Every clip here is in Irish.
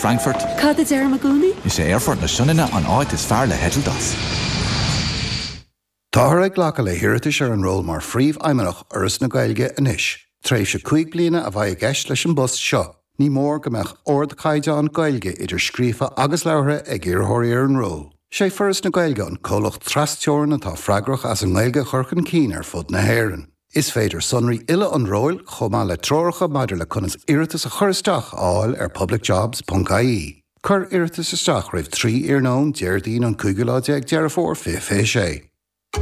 Frankfurt. Cad a deirim i gcónaí? Is é Aerfort na Sionainne an áit is fearr le heitilt as. Táthar ag glacadh le hiarratais ar an ról mar Phríomhfheidhmeannach Fhoras na Gaeilge anois. Tréimhse cúig bliana a bheidh i gceist leis an bpost seo. Ní mór go mbeadh ardchaighdeán Gaeilge, idir scríofa agus labhartha, ag iarrthóirí ar an ról. Is é Foras na Gaeilge an comhlacht tras-Teorann atá freagrach as an nGaeilge a chur chun cinn ar fud na hÉireann. Is féidir sonraí uile an róil, chomh maith le treoracha maidir le conas iarratas a chur isteach, a fháil ar publicjobs.ie. Cuir iarratais isteach roimh 3 iarnóin Déardaoin an cúigiú lá déag Deireadh Fómhair 2026.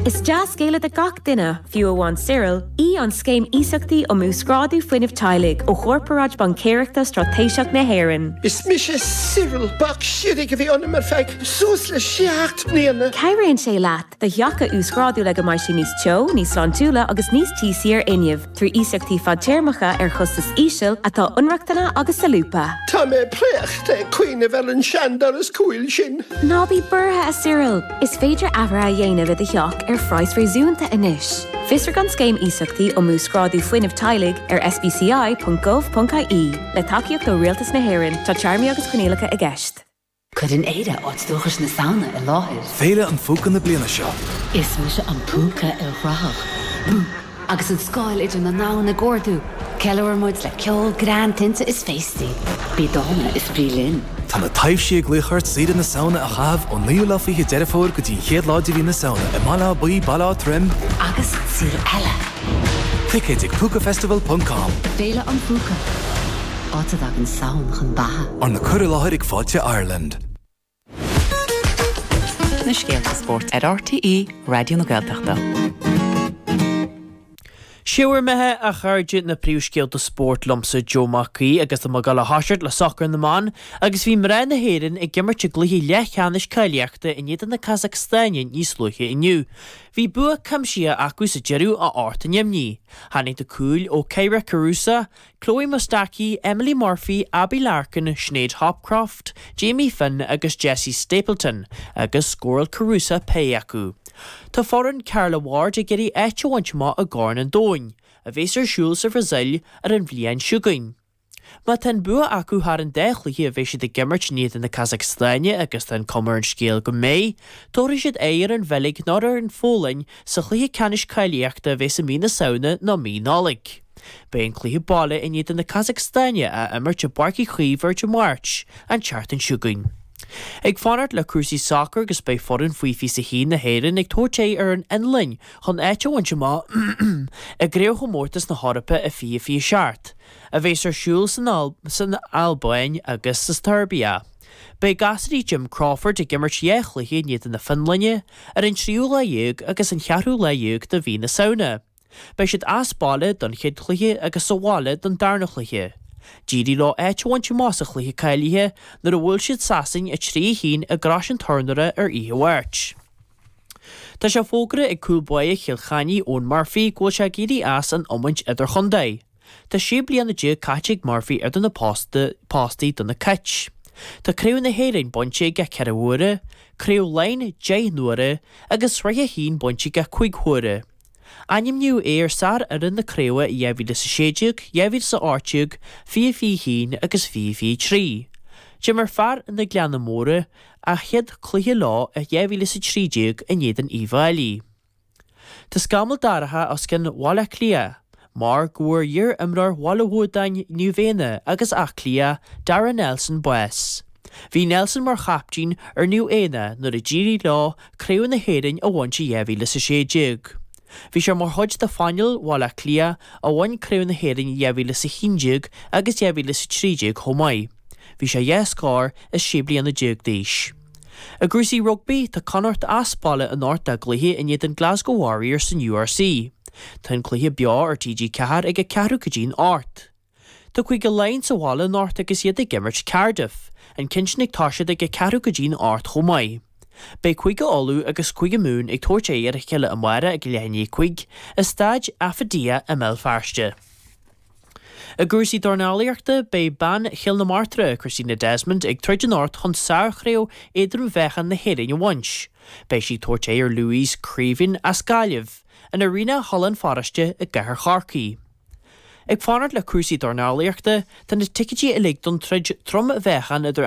Is dea-scéala do gach duine, fiú amháin Cyril, í an Scéim Iasachtaí um Uasghrádú Fuinnimh Teaghlaigh ó Chorparáid Baincéireachta Straitéiseach na hÉireann. Is mise Cyril. Bac siorraidh a bhí ionam ar feadh suas le seacht mbliana. Cabhraíonn sé leat do theach a uasghrádú le go mbeidh sé níos teo, níos sláintiúla agus níos tíosaí ar fhuinneamh, trí iasachtaí fadtéarmacha ar chostas íseal, atá inrochtana agus solúbtha. Tá mé préachta ag cuimhneamh ar an seandoras cúil sin. Ná bí buartha, a Cyril! Is féidir athruithe a dhéanamh i do theach ar phraghas réasúnta anois. Fiosraigh an Scéim Iasachtaí um Uasghrádú Fuinnimh Teaghlaigh ar sbci.gov.ie. Le tacaíocht ó Rialtas na hÉireann, tá téarmaí agus coinníollacha i gceist. Cuireann Éire áit dúchais na Samhna i láthair. Féile an Phúca na bliana seo. Is mise an púca ilchruthach, Boo! Agus an scáil idir na ndomhan ag ardú, ceiliúrann muid le ceol, greann, tinte is féastaí. Bí dána is bí linn! Tá na taibhsí ag glaoch ort saoire na Samhna a chaitheamh ón naoú lá fiche Deireadh Fómhair go dtí an chéad lá de mhí na Samhna i mBaile Átha Buí, Baile Átha Troim, agus sa saol eile! Ticéid ag Púcafestival.com. Féile an Phúca. Áit a dtagann Samhain chun beatha. Arna cur i láthair ag Fáilte Ireland. na scéalta spóirt ar RTÉ Raidió na Gaeltachta. 'Sé bhur mbeatha, a chairde, na príomhscéalta spóirt liomsa Joe Mac Aoidh agus tá mé ag dul a thoiseacht le sacar na mban agus bhí mná na hÉireann ag imirt i gcluiche leathcheannais cáilíochta in éadan na Casacstáine níos luaithe inniu. Bhí bua cuimsithe acu sa deireadh a hocht a neamhní. Tháinig na cúil ó Kyra Carusa, Chloe Mustaki, Emily Murphy, Abbie Larkin, Shanade Hopcroft, Jamie Finn agus Jessie Stapleton agus scóráil Carusa péire acu. Tá foireann Carla Ward ag iarraidh áit a bhaint amach i gCorn an Domhain, a bheas ar siúl sa Bhrasaíl ar an bhliain seo chugainn. Má tá an bua acu thar an dá chluiche a bheas siad ag imirt in éadan na Casacstáine agus tá an cuma ar an scéal go mbeidh, tabharfaidh siad aghaidh ar an Bheilg nó ar an Pholainn Sa chluiche ceannais cáilíochta a bheas i mí na Samhna nó mí Nollaig. Beidh an cluiche baile in éadan na Casacstáine á imirt i bPáirc Uí Chaoimh ar Dé Máirt, an tseachtain seo chugainn. Ag fanacht le cúrsaí sacair agus beidh foireann faoi 21 na hÉireann ag tabhairt aghaidh ar an Fhionlainn chun áit a bhaint amach i gCraobhchomórtas na hEorpa i 2027, a bheas ar siúl san Albáin agus sa tSeirbia. Beidh gasraí Jim Crawford ag imirt dhá chluiche in éadan na Fionlainne, ar an tríú lá dhéag agus an cheathrú lá dhéag de mhí na Samhna. Beidh siad as baile don chéad chluiche agus sa bhaile don darna chluiche. D'éirigh leo áit a bhaint amach sa chluiche cáilithe nuair a bhuail siad Sasain 3, 1 i gCrois an Turnóra ar oíche Mháirt. Tá sé fógartha ag cúl báire Chill Chainnigh Eoin Murphy go bhfuil sé ag éirí as an iomáint idirchontae. Tá sé bliana déag caite ag Murphy idir na postaí do na Cait. Tá Craobh na hÉireann bainte aige ceithre huaire, Craobh Laighean deich n-uaire agus Sraith a hAon bainte aige cúig huaire. Ainmníodh é ar shárfhoireann na craoibhe i 2016, 2018, 2021 agus 2023. D'imir fear na Gleanna Móire a chéad cluiche leo i 2013 in éadan Uíbh Fháilí. Tá scamall dorcha os cionn Bhaile Átha Cliath mar go bhfuair iar-imreoir Bhaile Bhuadáin, Naomh Éanna agus Áth Cliath, Darragh Nelson bás. Bhí Nelson mar chaptaen ar Naomh Éanna nuair a d'éirigh leo Craobh na hÉireann a bhaint i 2016. Bhí sé mar chuid de phainéal Bhaile Átha Cliath a bhain Craobh na hÉireann i 2011 agus 2013 chomh maith. Bhí sé dhá scór is sé bliana déag d'aois. I gcúrsaí rugbaí, tá Connacht as baile anocht dá gcluiche in éadan Glasgow Warriors san URC. Tá an cluiche beo ar TG4 ag a ceathrú go dtí an hocht. Tá Cúige Laighean sa bhaile anocht agus iad ag imirt Cardiff. An ceann sin ag toiseacht ag a ceathrú go dtí an hocht chomh maith. Beidh Cúige Uladh agus Cúige Mumhan ag tabhairt aghaidh ar a chéile amárach ag a leath i ndiaidh a cúig, i Staid Affidea i mBéal Feirste. I gcúrsaí dornálaíochta, beidh bean Chill na Martra, Christina Desmond, ag troid anocht chun sárchraobh éadrom-mheáchain na hÉireann a bhaint. Beidh sí ag tabhairt aghaidh ar Louise Creaven as Gaillimh, in Arena Halla an Pharóiste i gcathair Chorcaí. Ag fanacht le cúrsaí dornálaíochta, tá na ticéidí uilig don troid trom-mheáchain idir an.